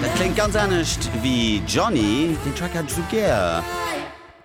Dat kléngt ganz anescht wéi Johnny, deen Track hat ech esou gär,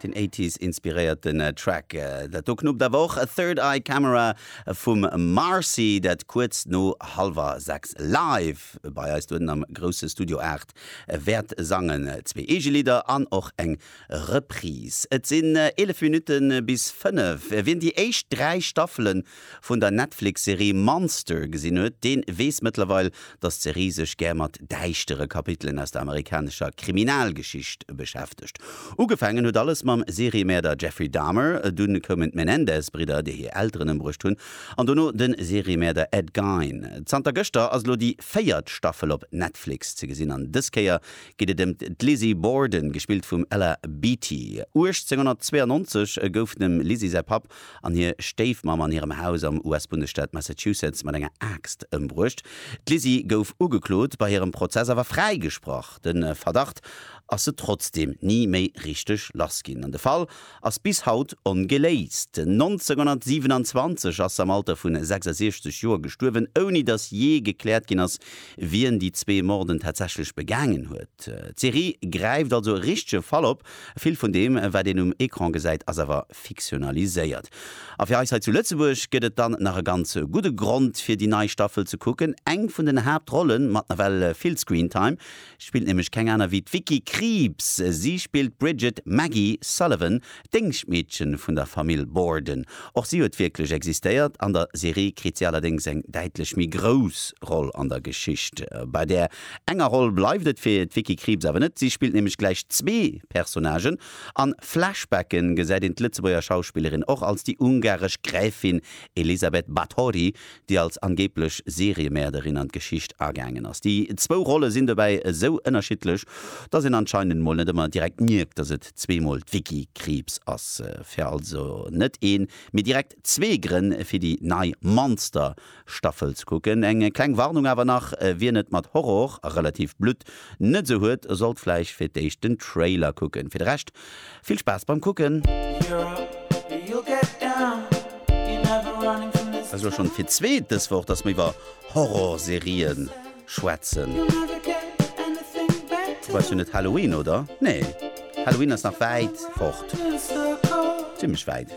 den Eighties inspiréierten Track. Dat do knuppt awer och Third Eye Camera vum Marcy, dat kuerz no hallwer 6 live bei eis dohennen am grousse Studio 8 wäert sangen. Zwee eege Lidder an och eng Reprise. Et sinn 11 Minutte bis 5. Wien déi éischt 3 Staffelen vun der Netflix-Serie Monster gesinn huet, deen weess mëttlerweil, dass d'Serie sech gär mat däischtere Kapitelen aus der amerikanescher Kriminalgeschicht beschäftegt. Ugefaangen huet alles mam Seriemäerder Jeffrey Dahmer, dunn koumen d'Menendez-Bridder, déi hir Elteren ëmbruecht hunn, an dono de Seriemäerder Ed Gein. Zanter gëschter ass elo déi véiert Staffel op Netflix ze gesinn an dës Kéier geet et ëm d'Lizzie Borden, gespillt vum Ella Beatty. 1892 gouf dem Lizzie säi Papp an hir Stéifmamm an hirem Haus am US-Bundesstaat Massachusetts mat enger Aaxt ëmbruecht. D'Lizzie gouf ugeklot, bei hirem Prozess awer fräigesprach. De Verdacht ass se trotzdeem ni méi richteg lass ginn an de Fall ass bis haut ongeléist. 1927 ass se am Alter vu 66 Joer gestuerwen, ouni datt jee gekläert ginn ass, wien déi zwee Morden tatsächlech begaangen huet. D'Serie gräift also e richtege Fall op, vill vun deem, wat een um Ecran gesäit, ass awer fiktionaliséiert. A fir eis hei zu Lëtzebuerg gëtt et dann nach e ganz gudde Grond fir déi nei Staffel ze kucken. Eng vun den Haaptrolle mat nawell vill Screentime spillt nämlech keng aner wéi d'Vicky Krieps. Si spillt d'Bridget Maggie Sullivan, d'Déngschtmeedchen vun der Famill Borden. Och si huet wierklech existéiert. An der Serie kritt si allerdéngs eng däitlech méi grouss Roll an der Geschicht. Bei där enger Roll bleift et fir d'Vicky Krieps awer net, si spillt nämlech gläich zwee Personnagen. An Flashbacken gesäit een d'Lëtzebuerger Schauspillerin och als déi ungaresch Gräfin Elisabeth Bathory, déi als angeeblech Seriemäerderin an d'Geschicht agaangen ass. Déi zwou Rolle sinn dobäi esou ënnerschiddlech, datt een anscheinend mol net ëmmer direkt mierkt, datt et zweemol d'Vicky Krieps ass. Fir also net een, mee direkt Zwee Grënn fir déi nei Monster Staffel ze kucken. Eng kleng Warnung awer nach, wien et mat Horror a relativ Blutt net sou huet, sollt vläicht fir d'éischt den Trailer kucken. Fir de Rescht vill Spaass beim kucken. Esou schonn fir d'zweet dës Woch, dass mer iwwer Horror Serien schwätzen. Wobei ass jo net Halloween, oder? Nee, Halloween ass nach wäit fort, zimlech wäit.